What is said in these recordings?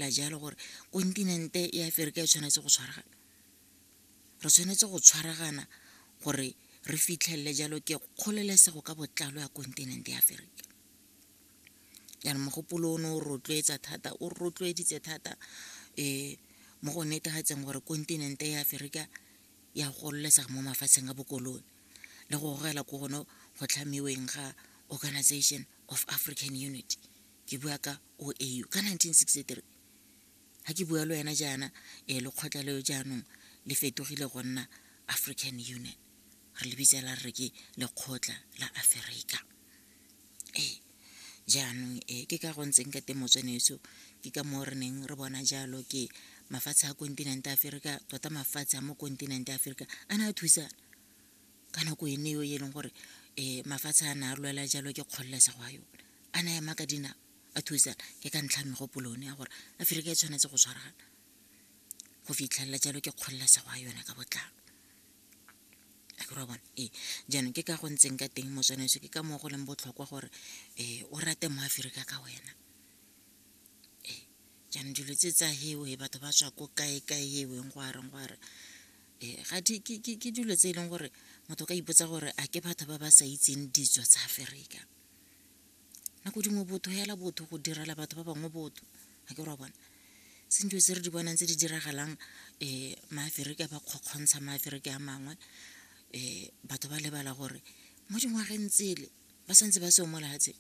la jalo gore kontinente ya aferika e tshwanetse go tshwaragana re tshwanetse go tshwaragana gore re fitlhelele jalo ke kgolelesego ka botlalo ya kontinente ya aferika jaanong mogopolo o ne o rotloetsa thata o rotloeditse thata um mo go netagatseng gore kontinente ya aferika ya gololesega mo mafatsheng a bokolone le go gogela ko gone go tlhamiweng ga organization of african unity ke bua ka o au ka 1963 ga ke bua le wena jaana um lekgotla leo jaanong le fetogile go nna african union re le bitsela re re ke lekgotla la aferika ee jaanong um ke ka go ntseng ka temotswenetso ke ka moo re neng re bona jalo ke mafatshe a kontinente aferika tota mafatshe a mo kontinente aferika a ne a thusana ka nako ene eo e leng gore um mafatshe a na a lwela jalo ke kgololesego a yone a na ema ka dinao a thusana ke ka ntlha ya megopolo one ya gore aforika e tshwanetse go tshwaragana go fitlhelela jalo ke kgololesego ya yone ka botlalo wa bona ee jaanong ke ka go ntseng ka teng motswanaetsho ke ka moo go leng botlhokwa gore um o rate mo aforika ka wena ee jaanong dilo tse tsa hewe batho ba tswa ko kae kae eweng go areng go areng. ee eh, ga ke dilo tse e leng gore motho ka ipotsa gore a ke batho ba ba sa itseng ditso tsa aferika nako dingwe botho hela botho go direla batho ba bangwe botho ga ke ra bona se ntse se re di bonang tse di diragalang um maaferika ba kgokgontsha maaferika a mangwe um batho ba lebala gore mo dingwageng tsele ba santse ba seo mo lehatsheng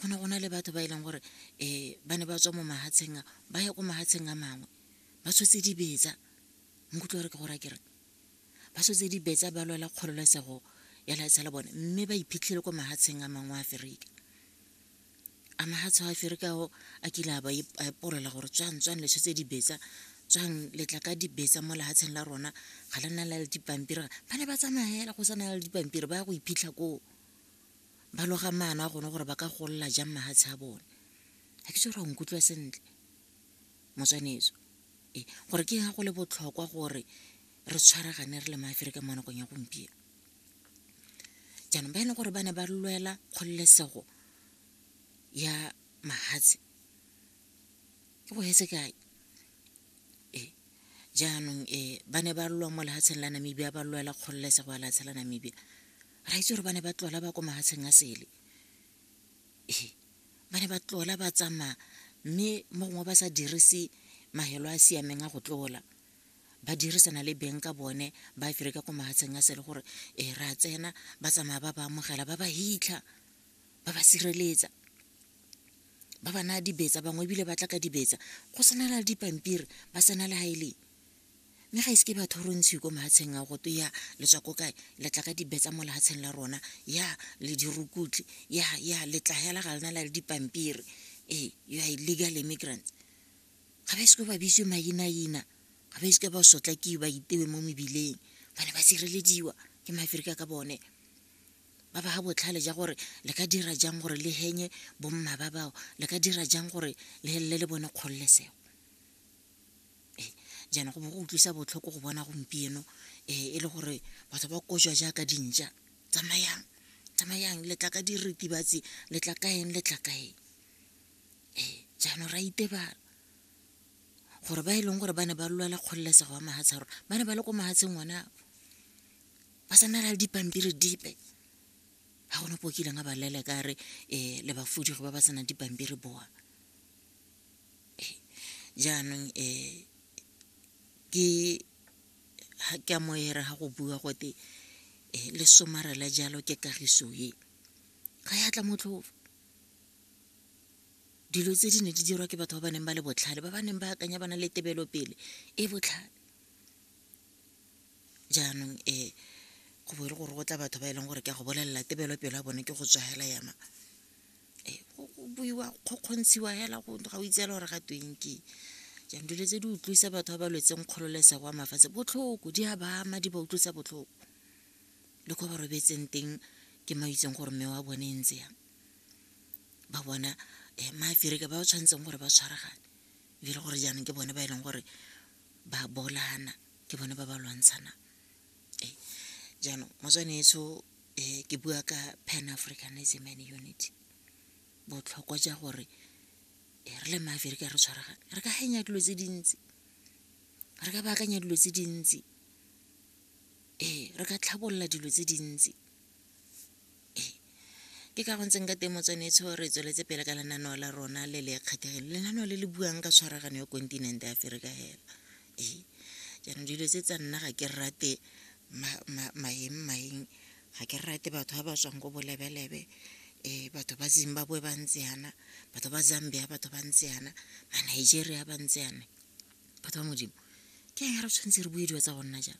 go ne go na le batho ba e leng gore um ba ne ba tswa mo mahatsheng a ba ya ko mahatsheng a mangwe ba tshotse dibetsa nkutlwa gore ke gore a kere ba tshotse dibetsa ba lwela kgololesego ya leatsha la bone mme ba iphitlhele ko mahatsheng a mangwe a aferika a mahatsho a aferika ao a kile a ba epolola gore tswang tswang le tshotse dibetsa tswang letla ka dibetsa mo lehatsheng la rona ga le na le le dipampiri ba ne ba tsamaya fela go sa na le dipampiri ba ya go iphitlha koo ba loga maano a gone gore ba ka golola jang mahatshe a bone ga ke se gore nkutlwa sentle motswaneso e gore ke ga go le botlhokwa gore re tshwaragane re le maaferika mo nakong ya gompieno jaanong ba e leng gore ba ne ba lwela kgololesego ya mahatshe ke go hetse kae e jaanong e ba ne ba lwa mo lehatsheng la namibia ba lwela kgololesego ya lehatshe la namibia ra itse gore ba ne ba tlola ba ko mahatsheng a sele ee ba ne ba tlola ba tsamaya mme mo gongwe ba sa dirise mahelo a siameng a go tlola ba dirisana le beng ka bone ba fere ka ko mahatsheng a sele gore e re a tsena ba tsamaya ba ba amogela ba ba hitlha ba ba sireletsa ba ba naya dibetsa bangwe ebile ba tla ka dibetsa go sena le dipampiri ba sena le ha e leng mme ga ise ke batho re ntshiwe ko mahatsheng a goto ya le tswa ko kae le tla ka dibetsa mo lehatsheng la rona ya le dirukutlhi ya ya le tla hela ga lena la le dipampiri ee you are illegal immigrants ga ba ise ko ba bitswe mainaina ga ba ise ka ba sotlakiwe ba itewe mo mebileng ba ne ba sirelediwa ke maaferika ka bone ba ba ga botlhale ja gore le ka dira jang gore le henye bomma ba bao le ka dira jang gore le helele le bone kgololesego jaana go bo go utlwisa botlhoko go bona gompieno e le gore batho ba kojwa jaaka dintšwa tsamayang tsamayang le tla ka diritibatsi le tla ka eng le tla ka eng jaanong ra itebala gore ba e leng gore ba ne ba lwela kgololesego ya mafatshe a rona ba ne ba le ko mafatsheng one ao ba sa na le dipampiri dipe ga gona ko kileng a ba leleka a re le ba senang dipampiri bowa. Jaanong ke a mo era ga go bua gote le somarela jalo ke kagiso e. Ga ya tla motlhofo. Dilo tse di ne di dirwa ke batho ba ba neng ba le botlhale, ba ba neng ba akanya ba na le tebelopele e botlhale. Jaanong go bo e le gore go tla batho ba e leng gore ke a go bolelela tebelopele ya bone ke go tswa hela ya mang? go buiwa kgokgontshiwa hela go ga o itseela gore ga tweng ke jang dilo tse di utlwisa batho ba ba lwetseng kgololesego wa mafatshe botlhoko di a ba ama di ba utlwisa botlhoko le ko ba robetseng teng ke ma itseng gore mme wa bone e ntse yang ba bona um maaferika ba ba tshwanetseng gore ba tshwaragane ebile gore jaanong ke bone ba e leng gore ba bolana ke bone ba ba lwantshanang jaanong motswanetso ke bua ka pan africanism and unity botlhokwa jwa gore re le maaferika re tshwaragane re ka hanya dilo tse dintsi re ka baakanya dilo tse dintsi ee re ka tlhabolola dilo tse dintsi. ke ka go ntseng ka teng motswanetsho re tsweletse pele ka lenaneo la rona le le kgethegeng lenaneo le le buang ka tshwaragano ya kontinente ya aferika hela ee jaanong dilo tse tsa nna ga ke rate maeng maeng ga ke rate batho ba ba tswang ko bolebelebe um batho ba zimbabwe ba ntse yana batho ba zambia batho ba ntse yana ba nigeria ba ntse yana batho ba modimo ke eng re tshwanetse re bue dilo tsa go nna jang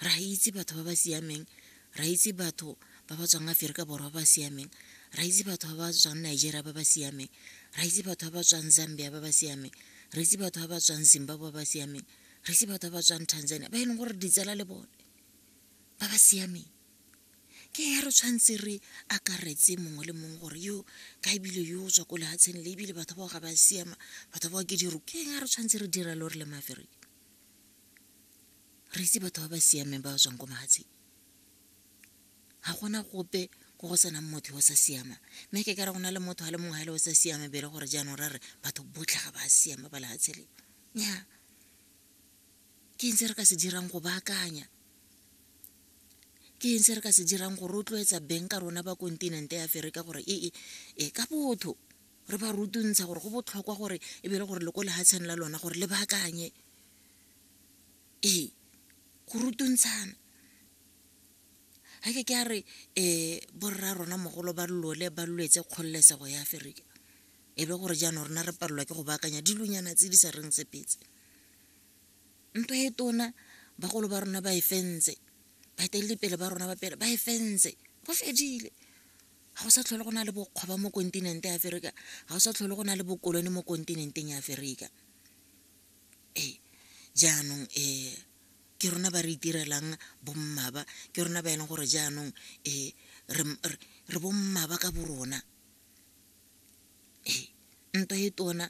ra itse batho ba ba siameng ra itse batho ba ba tswang aferika borwa ba ba siameng ra itse batho ba ba tswang nigeria ba ba siameng ra itse batho ba ba tswang zambia ba ba siameng re itse batho ba ba tswang zimbabwe ba ba siameng re itse batho ba ba tswang tanzania ba e leng gore ditsala le bone ba ba siameng ke ya re tshwanetse re akaretse mongwe le mongwe gore yo ka ebile yo o tswa ko lefatsheng le ebile batho bao ga ba siama batho bao ke diru ke ya re tshwanetse re dira le gore le maaferika re itse batho ba ba siameng ba ba tswang ko mahatsheng ga gona gope ko go senang motho yo o sa siama mme ke kare go na le motho a le mongwe ga le o sa siame be e le gore jaanong ra re batho botlhe ga ba siama ba lehatshe le nya ke eng se re ka se dirang go baakanya ke eng se re ka se dirang go rotloetsa beng ka rona ba kontinente ya aferika gore ee e ka botho re ba rutuntsha gore go botlhokwa gore e be le gore le ko lehatsheng la lona gore le baakanye ee go rutuntshana ga ke ke a re um borra rona mogolo ba lole ba lwetse kgololesego ya aferika e be gore jaanong rona re palelwa ke go baakanya dilonyana tse di sa reng tsepetse ntwa e tona bagolo ba rona ba e fentse baeteledipele ba rona ba pele ba e fentse go fedile ga go sa tlhole go na le bokgwaba mo kontinente ya aferika ga go sa tlhole go na le bokolone mo kontinenteng ya aferika ee jaanong um ke rona ba re itirelang bommaba ke rona ba e leng gore jaanong um re bommaba ka borona ee ntwa e tona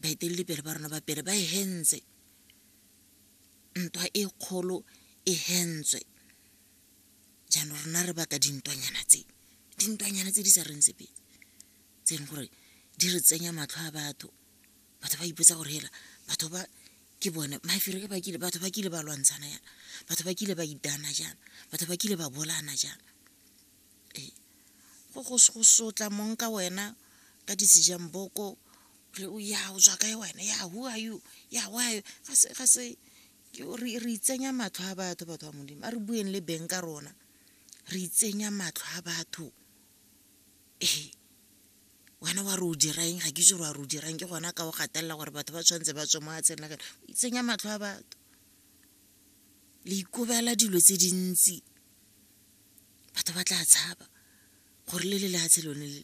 baeteledipele ba rona ba pele ba e hentse ntwa e kgolo e hentswe jaanong rona re baka dintwanyana tse dintwanyana tse di sa reng sepe tse e leng gore di re tsenya matlho a batho batho ba ipotsa gore hela batho ba ke bone mafere ke bakile batho ba kile ba lwantshana yana batho ba kile ba itana jana batho ba kile ba bolana jana ee go go sotla mong ka wena ka disejang boko re o ya o tswa kae wena ya who are you ya why ga se re itsenya matlho a batho batho ba modimo a re bueng le beng ka rona re itsenya matlho a batho ee wena wa re o dirang ga ke itse gore wa re o dirang ke gona ka o gatelela gore batho ba tshwanetse ba tswe mo atsheng la kane o itsenya matlho a batho le ikobela dilo tse dintsi batho ba tla tshaba gore le le lefatshe lone le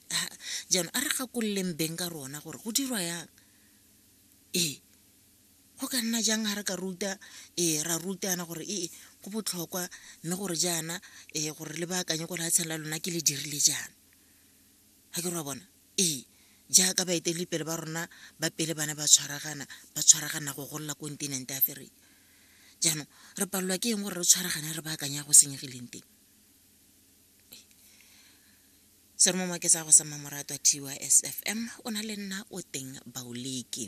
jaanong a re gakololeng beng ka rona gore go dirwa yang ee Go ka nna jang ga re ka ruta, ee, ra rutana gore ee go botlhokwa mme gore jaana um gore le baakanye ko lefatsheng la lona ke le dirile jaana? Ga ke ra bona? Ee, jaaka baeteledipele ba rona ba pele ba ne ba tshwaragana, ba tshwaragana go golola kontinente Aferika. Jaanong re palelwa ke eng gore re tshwaragane re baakanye ya go senyegileng teng? Seromo Maketsa go sa mmamoratwa TYS FM o na le nna o teng Baoleke.